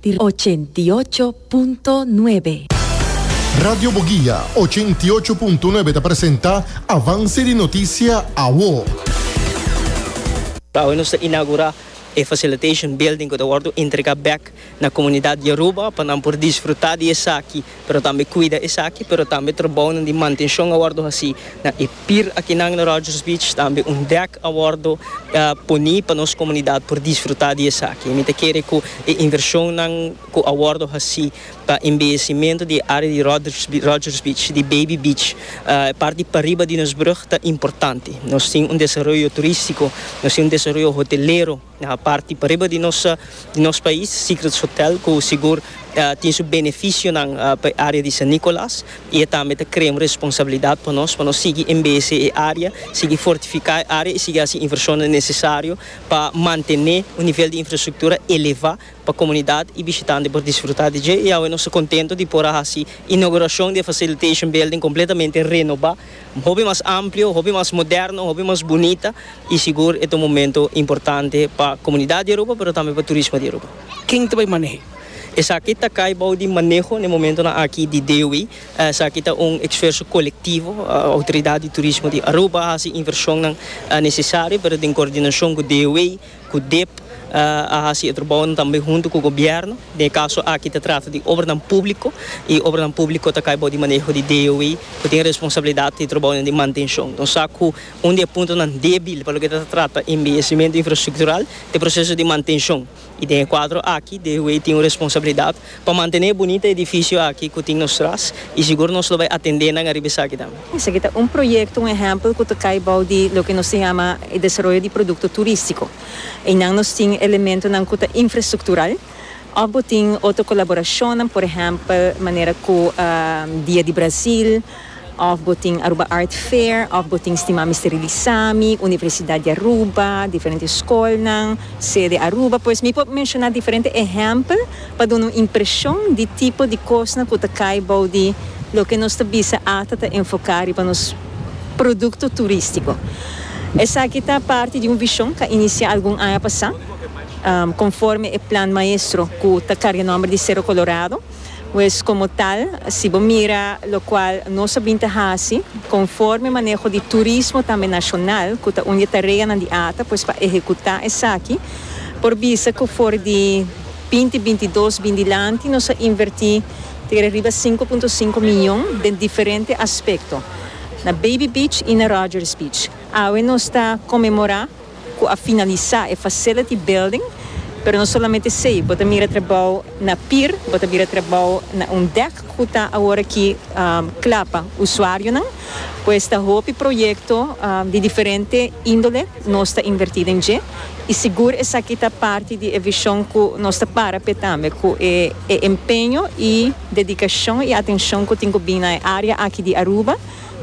di ochenta i ocho punto nuebe. Radio Boguia ochenta i ocho punto nuebe ta presenta avanse di notisia awo. Awe nos ta inagura e facilitation building cu ta wordo entrega bek na comunidad Yaruba pa nan por disfruta di esaki. pero tambe cuida esaki, pero tambe trabounan di mantencion a wordo haci na e pir akinan na Rogers Beach, tambe un dek a wordo poni pa nos comunidad por disfruta di esaki. Mi ta kere cu e inversionnan cu a wordo haci pa embellecimento di e area di Rogers Beach, di Baby Beach, e parti pariba di nos brug ta importante. Nos tin un desaroyo turistico, nos tin un desaroyo hotelero. A parti pariba di nos di nos pais Secrets Hotel ku sigur ta tin su benefisionan pa e área di San Nicolas i e tambe ta krea un responsabilidat pa nos pa nos sigui embese e área sigui fortifiká e área i sigui hasi invershonnan nesesario pa mantené un nivel di infrastruktura elevá pa komunidat i bishitante por disfrutá di dje i awe nos ta kontento di por a hasi inaugurashon di e facilitation building kompletamente renobá. hopi mas amplio, hopi mas moderno, hopi mas bunita y sigur e ta un momento importante pa comunidad di Aruba pero tambe pa turismo di Aruba. Ken ta bay manehe? Esaki ta cay bou di maneho na e momentonan aki di DOW. Esaki ta un esfuerso colectivo. Autoridad di Turismo di Aruba haci inversionnan necesario pero den coordinacion cu DOW. ku dep a hasi e trabounan tambe huntu ku gobièrnu. Den e kaso aki ta trata di obranan públiko i obranan públiko ta kai bou di maneho di DOI ku tin responsabilidat di trabounan di mantenshon. Nos sa ku un di e puntonan débil pa loke ta ta trata embelesimentu infrastruktural ta e proseso di mantenshon i den e kuadro aki DOI tin un responsabilidat Pa mantené e bunita edifisio aki ku tin nos tras i sigur nos lo bai atendé nan ariba esaki tambe. Esaki ta un proyekto, un ehèmpel ku ta kai bou di loke nos ta yama e desaroyo di produkto turístiko. Einan nos tin elementonan ku ta infrastruktural òf bo tin otro kolaborashonnan, por ehèmpel manera ku Dia di Brazil, Of bo tin Aruba Art Fair, of bo tin stima Mister Releasa mi, Universidad di Aruba, diferente scolnan, sede Aruba, pues mi por menciona diferente ehempel pa duna un impresion di tipo di cosnan cu ta cay bou di loke nos ta bisa ata ta enfoca riba nos producto turistico. Esaki ta parti di un vision ca inicia algun aña pasa, conforme e plan maestro cu ta carga nomber di Cerro Colorado. Pues como tal, si bo mira locual nos a bin ta haci, conforme maneho di turismo tambe nacional, cu ta un di e tareanan di ata, pues pa ehecuta esaki, por bisa cu for di binti bintidos bin dilanti nos a inverti tere riba sinku punto sinku miyon den diferente aspecto, na Baby Beach y na Rogers Beach. Awe nos ta conmemora. cu a finalisa e facility building, pero no solamente esey, bo ta mira trabao na pier, bo ta mira trabao na un dek cu ta awor aki cla pa usuarionan, pues ta hopi proyecto di diferente indole nos ta inverti den dje y sigur esaki ta parti di e vision cu nos ta para p'e tambe, cu e empeño y dedicacion y atencion cu tin cu bini na e area aki di Aruba.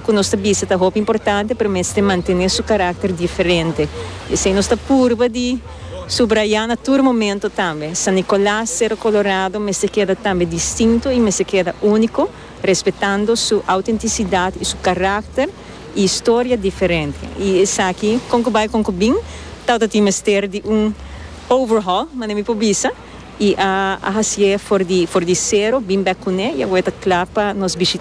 ku nos ta bisa ta hopi importante pero mester mantené su karakter diferente. Esei nos ta purba di subrayá na tur momento tambe. San Nicolas, Cerro Colorado mester keda tambe distinto i mester keda úniko, respetando su outentisidat i su karakter i historia diferente. I esaki, kon ku bai kon ku bin, tautatin mester di un overhaul, manera mi por bisa, i a hasié for di for di sero, bin bèk kuné i awor e ta kla pa nos bishitá.